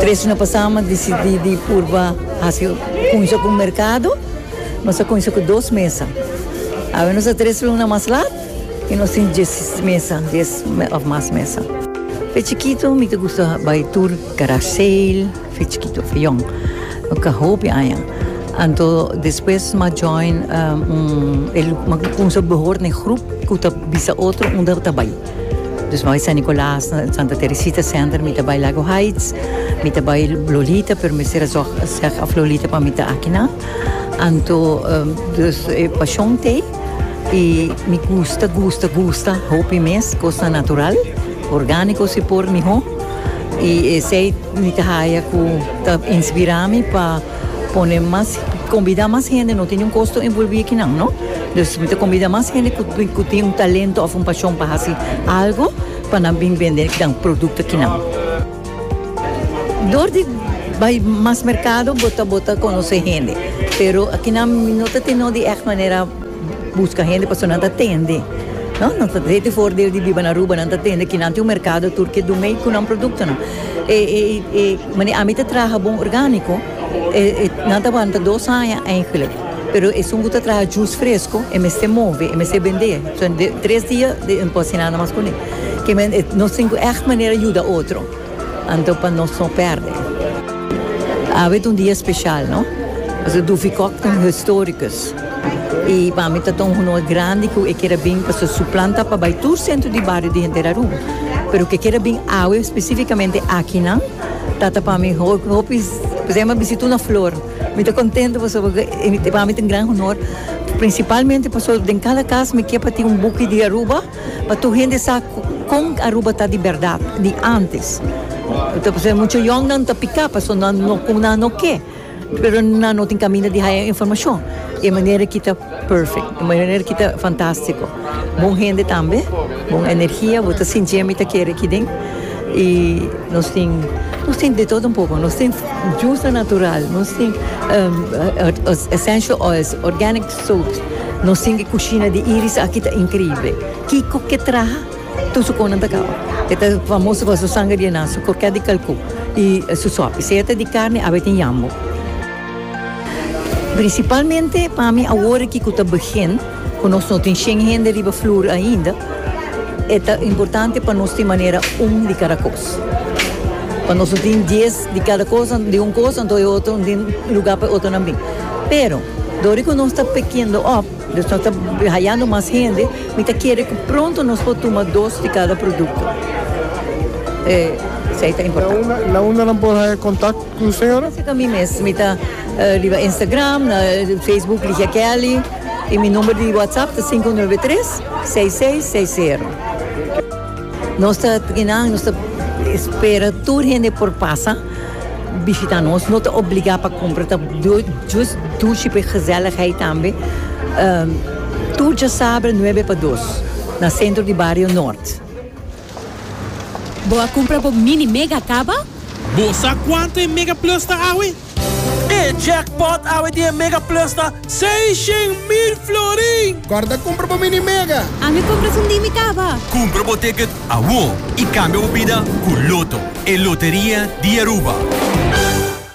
Tres hora pasá mi a disidí di purba hasi kunsha ku un merkado. Nos a kunsha ku dos mesa. Awe nos ta tres luna mas lat i nos tin dies mesa, dies òf mas mesa. Fe chikitu mi ta gusta bai tur garage sale, fe chikitu, fe yòn. Mi ka hopi aña. Anto despues mi a join un, mi a kunsha behor na e grup ku ta bisa otro unda ta bai. Dus nos a San Nicolas na Santa Teresita Center, mi ta bai Lago Heights, mi ta bai Lolita, pero mester a zorg seg of Lolita pa mi ta aki nan. Anto, dus e pasion t'ei i mi gusta, gusta, gusta hopi mes cosnan natural, organico si por miho. I esei mi ta haya cu ta inspira mi pa pone mas, combida mas hende, no tin niun costo envolvi aki nan, no. Nos mester combida mas hende cu tin un talento of un pasion pa haci algo pa nan bin bende nan producto kinan. Door di bay mas mercado bo ta bo ta conoce hende pero kinan no ta tin no di echt manera busca hende pasobra nan ta tende no nan ta hete voordeel di biba na Aruba nan ta tende kinan tin un mercado tur ke do mee cu nan productonan e e manera ami ta traha bon organico e e nan ta wanta dos aña. Pero esun ku ta traha jus fresko e mester move, e mester bendé. So de tres dia e no por hasi nada mas kuné. Ke men nos tin ku ègt manera yuda otro, anto pa nos no pèrdè. Awe ta un dia speshal, no? Paske Duffy Cock ta un historikus. I pa mi ta ta un honor grandi ku e keda bin, paske su plan ta pa bai tur sentro di bario di henter Aruba. Pero ke keda bin awe, spesifikamente akinan, ta ta pa mi hopi, kusai mas bisita una flor. Mi ta contento pasobra cu e pa mi ta un gran honor, principalmente pasobra den cada cas mi kier pa tin un buki di Aruba pa tur hende sa con Aruba ta di berdad, di antes. Ta pasaba mucho yongnan ta pica pasobra nan no cu nan no ke, pero nan no tin caminda di haya informacion. E manera aki ta perfect, e manera aki ta fantastico. Bon hende tambe, bon energia, bo ta sinti ami ta kere aki den y nos tin nos tin de todo un poco, nos tin jusa natural, nos tin essential oils, organic soaps, nos tin e cushina di Iris aki ta increible, kico ke traha tur su conan ta caba, e ta famoso pa su sangre di enan, su croquet di calcou y su sopi, sea ta di carne, awe tin yambo. Principalmente pa mi awor aki cu ta begin, cu nos no tin shen hende riba floor ainda, e ta importante pa nos tin manera un di cada cos. Pa nos no tin dies di cada cos, di un cos anto e otro no tin lugar pa e otronan bin. Pero, dor di cu nos ta pickindo op, nos ta hayando mas hende, mi ta kere cu pronto nos por tuma dos di cada producto. Esey ta importante. Na unda nan por haya contact? Cu señora? Seca mi mes. Mi ta riba Instagram, na Facebook Ligia Kelly. Y mi number di WhatsApp ta sinku nuebe e tres, seis seis seis sero. Nos ta kinan, nos ta espera tur hende por pasa bishita nos. No ta obliga pa cumpra, ta jus dushi pa e gezelligheid tambe. Tur djasabre nuebe pa dos na Centro di Barrio Noord. Bo a cumpra bo mini mega caba? Bo sa cuanto e mega plus ta awe? E jackpot awe di e mega plus ta seishén mil florin! Corda cumpra bo mini mega! Ami cumpra su mimi caba! Cumpra bo ticket awor y cambia bo bida cu Lotto, e loteria di Aruba!